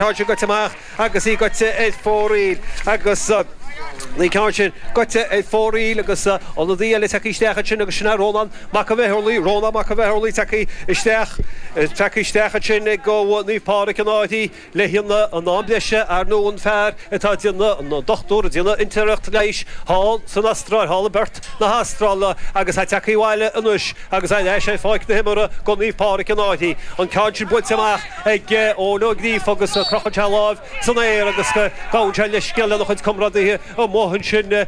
ceann sin gaibhte amach agus í gaibhte ar fóraoil agus an ceann sin gaibhte ar fóraoil agus ionadaí eile tagtha isteach ansin agus sin é Rónán Mac an Bheithorlaigh, Rónán Mac an Bheithorlaigh tagtha isteach, tagtha isteach ansin ag go Naomh Pádraig An Fháithche le haghaidh an am breise, ar ndú an fear atá ag déanamh, an dochtúir ag déanamh inteirneacht leighis thall san Astráil, thall i bPert na hAstráile agus é tagtha abhaile anois agus é ar ais ar pháirc na himeartha go Naomh Pádraig An Fháithche, an ceann sin buailte amach. ag Eoin Ó Gríofa agus crochann sé a láimh san aer agus gabhann sé leithscéal lena chuid comrádaithe amuigh ansin ar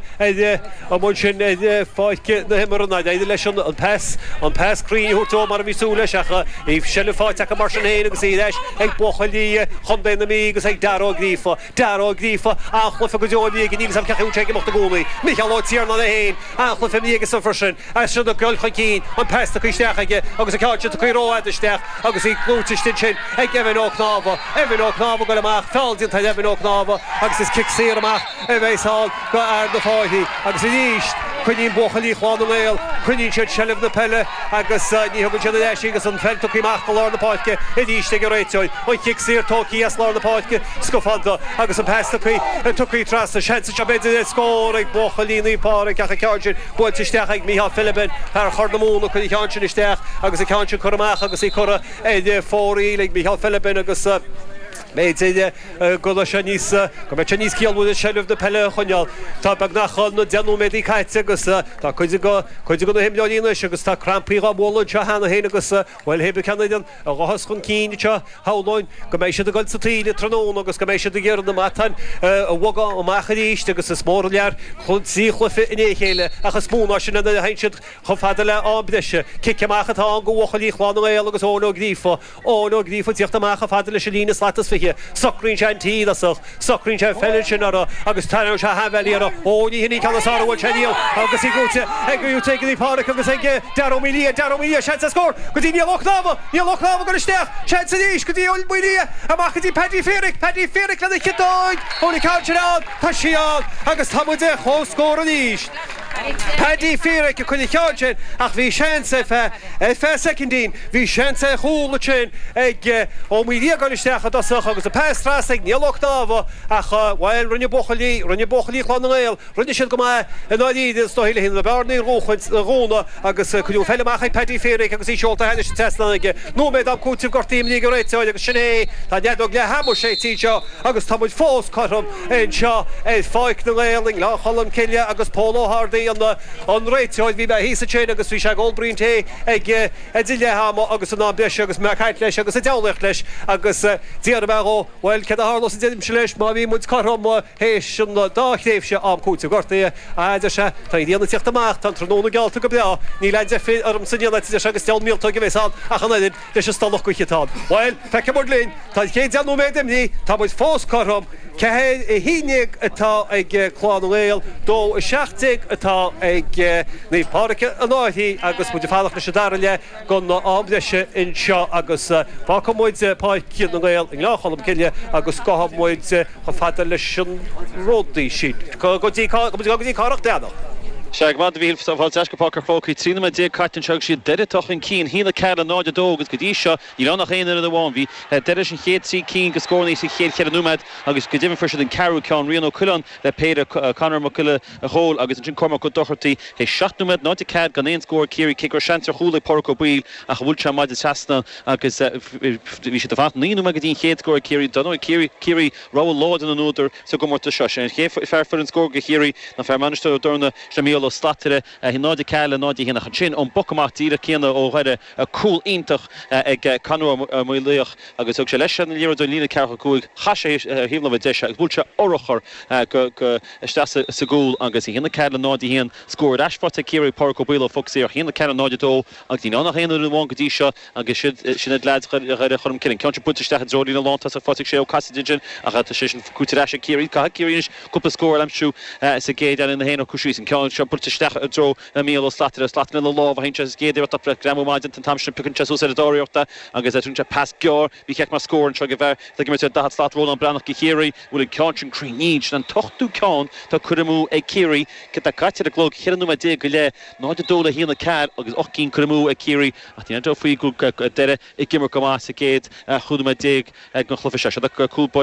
amuigh ansin ar pháirc na himeartha nár éirigh leis an pas an pas cruinn a thabhairt dó mar a bhí súil leis ach bhí seilbh faighte acu mar sin féin agus í ar ais ag buachaillí Chlann na nGael agus ag Darragh Ó Gríofa. Dara Ó Gríofa, a' sclúchas go deo ina dhiaidh, níl 'fhios a'm cé acu ag imeacht i gcónaí. Micheál Ó Tiarnáin é féin, a' sclúchas ina dhiaidh seisean freisin, as sin ag dul chun cinn, an pas tugthaí isteach aige agus an ceann sin tugthaí rófhada isteach agus í gaibhte istigh ansin ag Evan Ó Cnámha. Evan Ó Cnámha ag goil amach, feall déanta ar Evan Ó Cnámha agus is cic saor amach a bheas ann. go Naomh Pádraig An Fháithche agus arís coinníonn buachaillí Chlann na nGael, coinníonn siad seilbh na peile agus ní thugann siad ar ais í agus an pheil tugtha amach go lár na páirce arís ag an réiteoir. An cic saor tógthaí as lár na páirce scafánta agus an pas tugthaí trasna, seans anseo b'fhéidir le scór ag buachaillí Naomh Pádraig ach an ceann sin buailte isteach ag Micheál Philibin, fear Chorr na Móna, cur an cheann sin isteach agus an ceann sin curtha amach agus í curtha ar fóraoil ag Micheál Philibin agus b'fhéidir. go raibh sé níos, go mbeidh sé níos ciallmhaire seilbh na peile a choinneáil. Tá beagnach na deich nóiméadaí caite agus tá cuid de, cuid de na himreoirí anois agus tá crampaí dhá mbualadh anseo cheana féin agus, bhuel, pé ar bith ceann acu a ghabhfas chun cinn anseo, shamhlóinn go mbeidh siad ag goil sa taoille tráthnóna agus go mbeidh siad ag iarraidh na matáin a bhogadh amach arís agus is mór an t-iarraidh trí chluiche i ndiaidh a chéile ach is mó ná sin nuair a théann siad chomh fada le ham breise. Cic amach atá ann go bhuachaillí Chlann na nGael agus Eoin Ó Gríofa, Eoin Ó Gríofa ag tíocht amach chomh fada leis an líne slat is fiche. Socraíonn sé an tulach. Socraíonn sé an pheil sin uirthi agus tarraingíonn sé a sheanbhuille uirthi. Ó, ní hin í an ceann is fearr a bhuail sé riamh agus í brúite ag Rí Rté, ag Rí Pádraic agus ag Darragh Ó Maoildhia. Darragh Ó Maoildhia, seans ar scór go dtí Niall Ó Cnámha! Niall Ó Cnámha ag cur isteach. Seans arís go dtí Eoin Ó Maoildhia. Amach go dtí Paddy Fairic. Paddy Fairic lena chiotóig. Ó, ní haon chabhair sin ann. Tá sí ann agus tá muid ar chomhscór arís. Paidí Feerick ag cur an cheann sin ach bhí seans ar feadh, ar feadh soicindín, bhí seans ar chúl ansin ag Ó Maoilíogáin isteach i dtosach agus an pas trasna ag Niall Ó Cnámha ach, bhuel, rinne buachaillí, rinne buachaillí Chlann na nGael, rinne siad go maith i ndáiríre is dóigh leis na bearnaí a dhúchaint, a dhúnadh agus cuireadh an pheil amach ag Paidí Feerick agus í seolta thar an trasnán aige. Nóiméad am cúitimh gortaithe imrithe ag an réiteoir agus sin é, tá nead beag le hamharc sé tslí seo. Agus tá muid fós cothrom anseo ar pháirc na nGael i nGleann Cholm Cille agus Pól Ó hArdaí an réiteoir. Bhí mé thíos ansin agus bhí sé ag ól braon tae ag idir leath ama agus in am breise agus mé ag caint leis agus ag deabhlaíocht leis agus d'iarr mé dhó, bhuel, céard a tharlós a deirimse leis, má bhíonn muid cothrom théis an dá thréimhse am cúitimh gortaithe, a fhad, a deir sé, tá an ghrian ag teacht amach, tá an tráthnóna geallta go breá, níl aon deifir ormsa a dhéanamh, a deir sé, agus deabhal míoltóg a bheas ann ach an oiread. Anois is dul chuige atá ann. Bhuel, feicfimid linn. Tá an chéad deich nóiméad imithe, tá muid fós cothrom. Ceathair a haon déag atá ag Clann na nGael, dó a seacht déag atá ag Naomh Pádraig An Fhairche agus muid ag fanacht leis an dara leath den am breise anseo agus fágfaidh muid Páirc na nGael i nGleann Cholm Cille agus gabhfaidh muid chomh fada leis an ródaí sin go dtí Garry Mac Donncha. Sea go raibh maith agat a Mhichíl fáilte ar ais go Páirc an Chrócaigh. Trí noiméad déag caite anseo agus siad Doire atá chun cinn, a haon a ceathair le 0 2, agus go dtí seo níl ann ach aon fhoireann amháin bhí Doire leis an chéad trí cinn go scóranna sa chéad cheithre nóiméad agus go deimhin fuair siad an ceathrú ceann, Rian Ó Coileáin le péire, Conor Mac Giolla Chomhaill agus ansin Cormac Ó Dochartaí théis seacht nóiméad 0 4 gan aon scór ag Ciarraí cé go raibh seans ar chúl ag Pádraic Ó Baoill ach bhuail sé an maide trasna agus bhí sé ag fanacht naoi nóiméad go dtí an chéad scór ag Ciarraí dar ndóigh Ciarraí rogha láidir na n-údar sa gcomórtas seo, sé an chéad fear a fuair scór go Chiarraí ná fear Mhainistir Ó dTorna, sin Micheál Ó Slatara, 0 4 le 0 1 ach ansin ón bpoc amach díreach céanna ó Dhoire, cúl iontach ag Conor Ó Maolaodha agus thug sé leis an liathróid ó líne ceathracha cúig, chuaigh sé ar thaobh láimhe deise agus bhuail sé urchar isteach sa gcúl agus 1-4-0-1 scór ar ais faighte ag Ciarraí ag Pádraic Ó Baoill ó phoc saor, 1-4-0-2 agus níl ann ach aon fhoireann amháin go dtí seo agus siad sin iad leaids Dhoire Cholm Cille. An ceann sin buailte isteach i dtreo líne lántosach fad le Sé Ó Casaide ansin ach tá sé sin buaite ar ais ag Ciarraí. Caithfidh Ciarraí anois cúpla scór a aimsiú sa gcéad leath le iad fhéin a shocrú síos. An ceann seo buailte isteach i dtreo Mícheál Ó Slatara, slat mil i lámha, chinn sé air sa gcéad iarracht opera a ghreamú maidin den t-am sin, piocann sé suas ar an dara hiarracht agus tugann sé pas gearr, ba cheart go mbeadh scór anseo ag bhfear atá ag imirt ar dhaichead slat, Rónán Breathnach go Chiarraí, an bhfuil an ceann sin cruinn, sin an t-ochtú ceann atá curtha amú ag Ciarraí céard atá caite ar an gclog, cheithre nóiméad déag go leith, 0-2 le haon a ceathair agus ocht gcinn curtha amú ag Ciarraí ach níl aon dabht faoi go raibh Doire ag imirt go maith sa gcéad chúig nóiméad déag den chluiche seo, sin cúl báire.